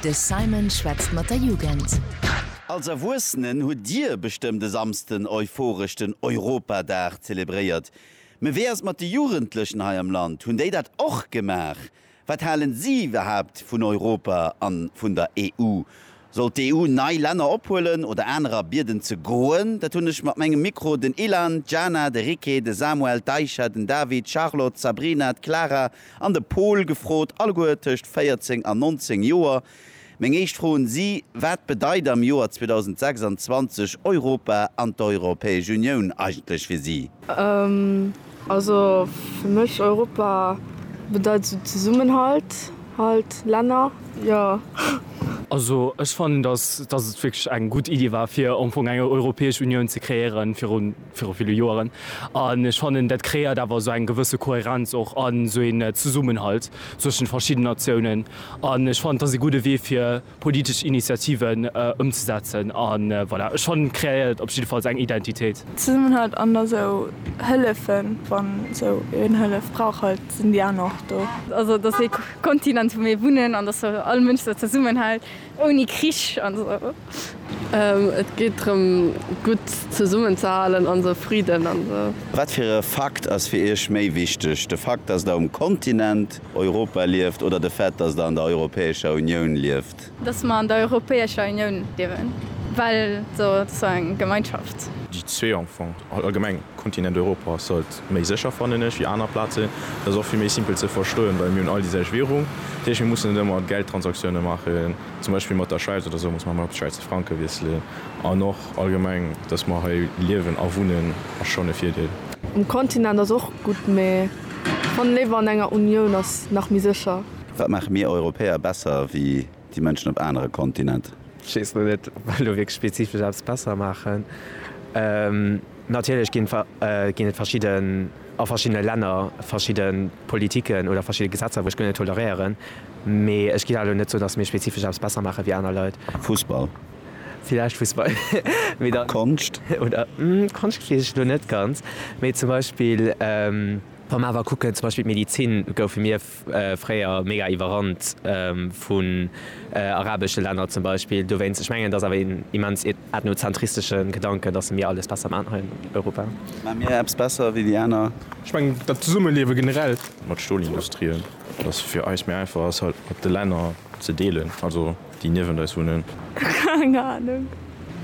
De Simon schwätzt mat der Jugend. Als Erwuessenen hutt Dir bestëmmt e Samsden euphoresch den Europadag zelebréiert. Mee wéi ass et mat de Jugendlechen hei am Land? Hunn déi dat och gemaach? Wat halen si iwwerhaapt vun Europa an vun der EU? Soll d'EU nei Länner ophuelen oder anerer bieden ze goen? Dat hunn ech mat mengem Mikro den Ilan, d'Jana, de Ricky, de Samuel, d'Aisha, den David, d'Charlotte, d'Sabrina, d'Clara an de Pol gefrot, alleguer tëscht 14 an 19 Joer. Meng éischt Fro un si, Wat bedeit am Joer 2026 Europa an d'Europäesch Unioun eigentlech fir si? Also fir mech Europa bedeit esou Zesummenhalt halt, Länner jo. Also ech fannen dass dass et wierklech eng gutt Iddi war fir am Fong eng Europäesch Unioun ze kreéieren virun viru ville Joeren an ech fannen dat kreéiert awer esou eng gewësse Kohärenz och an esou een Zesummenhalt zwëschen verschidden Natiounen an ech fannen et ass ee gudde Wee fir politesch Initiativen ëmzesetzen a voilà, ech fannen et kreéiert op jiddefalls eng Identitéit. Zesummenhalt an da sou hëllefen, wann sou een Hëllef brauch halt sinn déi aner och do. Also et ass ee Kontinent wou mir wunnen an dass all Mënsch sou zesummenhält ouni Krich an sou. Et geet drëm gutt zesummen ze halen an sou Friden an sou. Wat fir e Fakt ass fir Iech méi wichteg, de Fakt dass der um Kontinent Europa lieft oder de Fait, dass Der an der Europäescher Unioun lieft? Dass mer an der Europäescher Unioun liewen, well se ass eng Gemeinschaft. Déi zwee am Fong, allgemeng, Kontinent Europa ass haut méi sécher, fannen ech, wéi aner Plazen. Dat ass och vill méi simpel ze verstoen, well mir hunn all déi selwecht Währung. Dat heescht, mir mussen net ëmmer Geldtransaktiounen maachen, zum Beispill mat der Schwäiz oder esou muss mer ëmmer op de Schwäizer Franke wiesselen. An och allgemeng, dass mer hei liewen a wunnen, ass schonn e Virdeel. Um Kontinent ass och gutt, mee. Mann léwer an enger Unioun ass nach méi sécher. Wat maache mir Europäer besser wéi déi Mënschen op anere Kontinent? Ech weess lo net, ob mer do wierklech spezifesch eppes besser maachen. Natierlech ginn et verschidde, a verschiddene Länner verschidde Politiken oder verschidde Gesetzer, wou ech guer net toleréieren. Mee ech géif awer lo net soen, datt mir spezifesch eppes besser maache wéi aner Leit. Fussball? Villäicht Fussball. Mee da. Konscht. Oder? Konscht weess ech elo net ganz. Mee zum Beispill, wa mer awer kucken, zum Beispill d'Medizin, goufe mir fréier mega iwwerrannt vun arabesche Länner zum Beispill. Dowéinst, ech mengen, et ass awer een immens ethnozentristesche Gedanken, dass mir alles besser maachen hei an Europa. Maache mir eppes besser wéi déi aner? Ech mengen, dat Zesummeliewe generell. Mat Stolindustrie, dass fir eis méi einfach ass, halt mat de Länner ze deelen. Also. Déi niewent eis wunnen. Keng Ahnung.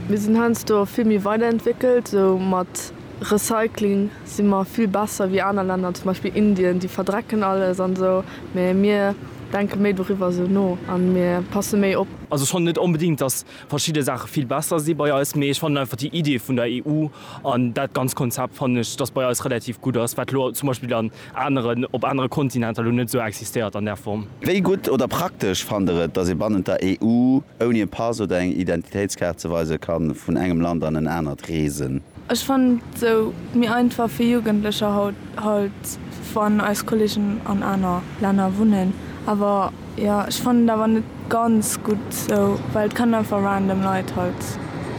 Mir sinn heiansdo vill méi weiderentwéckelt. Sou mat Recycling si mer vill besser wéi aner Länner, zum Beispill Indien. Déi verdrecken alles an esou, mä mir denke méi doriwwer esou no a mir passe méi op. Also ech fannen net onbedingt, dass verschidde Saache vill besser si bei eis, mee ech fannen einfach déi Idee vun der EU an dat ganz Konzept fannen ech, dass bei eis relativ gutt ass, wat elo zum Beispill an aneren op anere Kontinenter lo net esou existéiert an där Form. Wéi gutt oder praktesch fannt der et, datt ee bannent der EU ouni e Pass oder eng Identitéitskaart ze weise ka vun engem Land an en anert reesen? Ech fannen et esou méi einfach fir Jugendlecher haut, halt wann eis Kollegen an aner Länner wunnen, awer. Jo ech fannen et awer net ganz gutt sou, well et kann einfach random Leit halt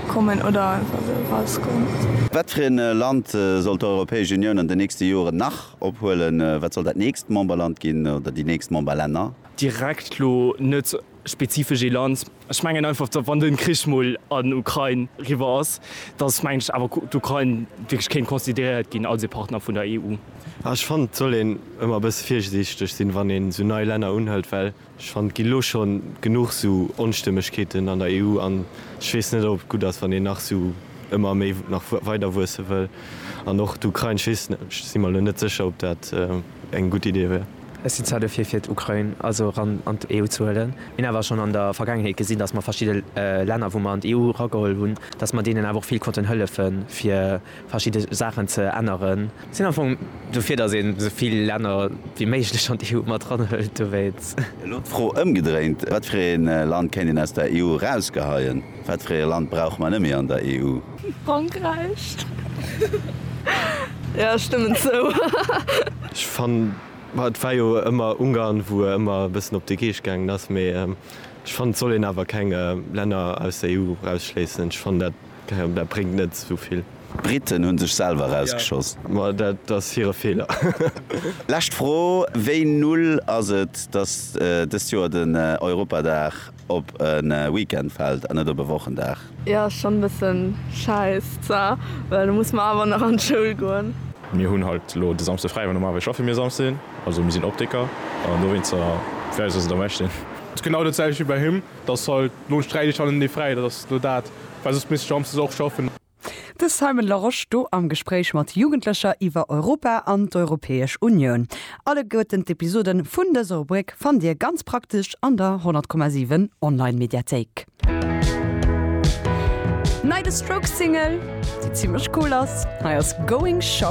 kommen oder einfach sou rausgoen. Wat fir een Land soll d'Europäesch Unioun an den nächsten Joeren nach ophuelen? Wat soll dat nächst Memberland ginn oder déi nächst Memberlänner? Direkt lo net spezifesch ee Land. Ech mengen einfach, datt, wann de Krich mol an d'Ukrain eriwwer ass, datt, mengen ech, awer d'Ukrain wierklech kéint consideréiert ginn als ee Partner vun der EU. Ah, ech fannen, et soll een ëmmer e bësse virsiichteg sinn, wann een esou nei Länner unhëlt, well ech fannen, et ginn elo schonn genuch esou Onstëmmegkeeten an der EU an ech weess net, ob et gutt ass, wann een nach esou ëmmer méi nach weider wuesse wëll. An och d'Ukrain, ech weess net, ech si mer elo net sécher, ob dat eng gutt Idee wär. Ech sinn zwar dofir fir d'Ukrain also eran an d'EU ze huelen, mir hunn awer schonn an der Vergaangenheet gesinn, datt mer verschidde Länner wou mer an d'EU erageholl hunn, datt mer deenen awer och vill konnten hëllefe fir verschidde Saachen ze änneren. Sinn am Fong dofir, datt een esou vill Länner wéi méiglech an d'EU mat eranhëlt. Dowéinst. Elo d'Fro ëmgedréint, Wat fir ee Land kéint een aus der EU erausgeheien? Wat fir ee Land brauche mer net méi an der EU? Frankräich. Jo, ech stëmmen zou. Ech fannen, ma et war jo ëmmer Ungarn wou e ëmmer e bëssen op de Geescht gaangen ass, mee ech fannen et soll een awer keng Länner aus der EU erausschléissen. Ech fannen dat gehéiert, dat bréngt net esou vill. D'Briten hunn sech selwer erausgeschoss. Ma dat ass hire Feeler. Lescht Fro, Wéi null ass et, datt dëst Joer den Europadag op e Weekend fällt an net op e Wochendag. Jo ass schon bessen scheiss za well du muss man awer nach an d'Schoul goen. Mir hunn halt elo de Samsde fräi, well normalerweis schaffe mir Samsden, also mir sinn Optiker an dowéinster fir eis ass et am beschten. Ass genau dat selwecht wéi bei him, dass halt elo sträich ech halt en Dee fräi, dat ass elo dat, well soss misst ech samsdes och schaffen. De Simon Larosche do am Gespréich mat Jugendlecher iwwer Europa an d'Europäesch Unioun. Alleguerten d'Episoden vun dëser Rubrik fannt Dir ganz praktesch an der 100,7 Online-Mediathéik. Nei de Strokes Single, déi zimmlech cool ass. Hei ass Going Shopping.